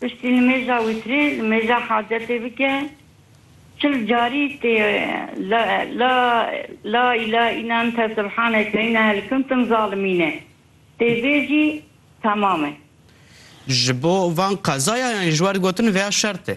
Piştî nimêja wîtrî nimêja hacetê bike çil carî tê la la la îla îna nte subhaneke înehel kuntum zalimîne tê bêjî temam e. Ji bo van qezaya yan ji wer gotin vêya şertê.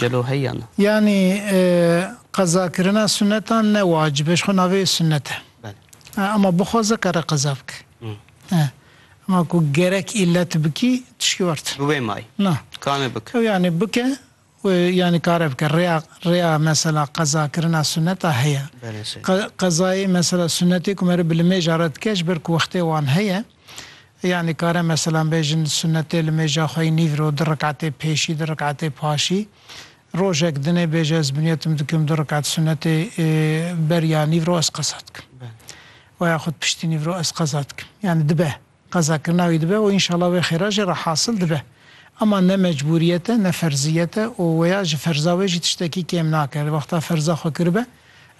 Gelo heyan? Yanî qezakirina sunetan ne wacib e, ji xwe navê sunet e. Ama bixwaze kare qeza bike. Ama ku gerek îlet bikî tişkî wer tune. Bi wê may? Na. Kane bike? Ew yanî bike û yanî kare bike. Rêya rêya mesela qezakirina sunet a heye. Qezayê mesela sunetê ku me re bi li mêja re dike ji ber ku wextê wan heye. Ya nikare meselan bêjin sunetê li mêja xwe yî nîv ro du riketê pêşî du riketê paşî. Rojek din ê bêje ez binyetim dikim du riket sunetê ber ya nîv ro ez qeza dikim. Wa ya xud piştî nîv ro ez qeza dikim. Yanî dibe. Qeza kirina wî dibe û înşela wê xêra jî re hasil dibe. Ema ne mecbûriyet e ne ferziyet e û wêya ji ferza wê jî tiştekî kêm nake. Di wexta ferza xwe kiribe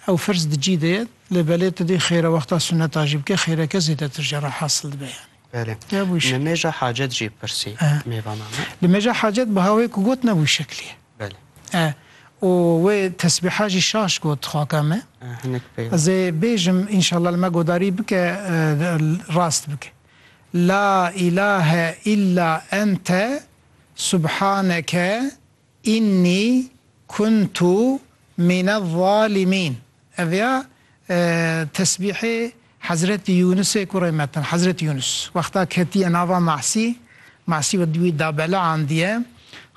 ew firz di cî de ye Lê belê tu dê xêra wexta suneta jî bikî, xêreke zêdetir jî re hasil dibe yanî. Belê. Ya bû şeklî. Li mêja hacet jî pirsî mêvanan e. Li mêja hacet biha wê ku got ne bû şeklî ye. Belê. E. Û wê tesbîha jî şaş got xaka me. E. Hinek pey. Ez ê bêjim înşallah li me godarî bike rast bike. La îlahe îlla ente subhaneke. Înnî kuntu mine'z-zalimîn Ev ya tesbîhê Hezretî Yûnusê kurê Metin. Hezretî Yûnus wexta ketiye nava Masî, Masî wî da bela andiye.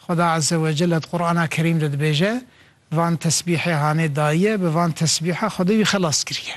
Xweda Ezze wecel a di Qur'ana Kerîm de dibêje, Van tesbîhê hanê dayiye, bi van tesbîha Xwedê wî xelas kiriye.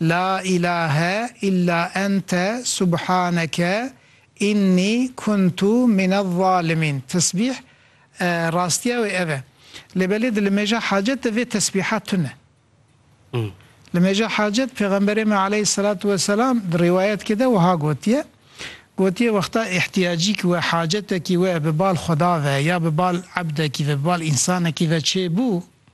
La ilahe illa ente subhaneke inni kuntu minezzalimîn tesbîh e, rastiya wê ev e. Lê belê di limêja hacet de vê tesbîha tune. Limêja hacet Pêxemberê me aleyhîsselatu weselam di rîwayetke de wiha gotiye, Gotiye wexta îhtiyacîk we, hacetekî we bi bal xweda ve ya bi bal ebdekî ve, bi bal însanekî ve çêbû,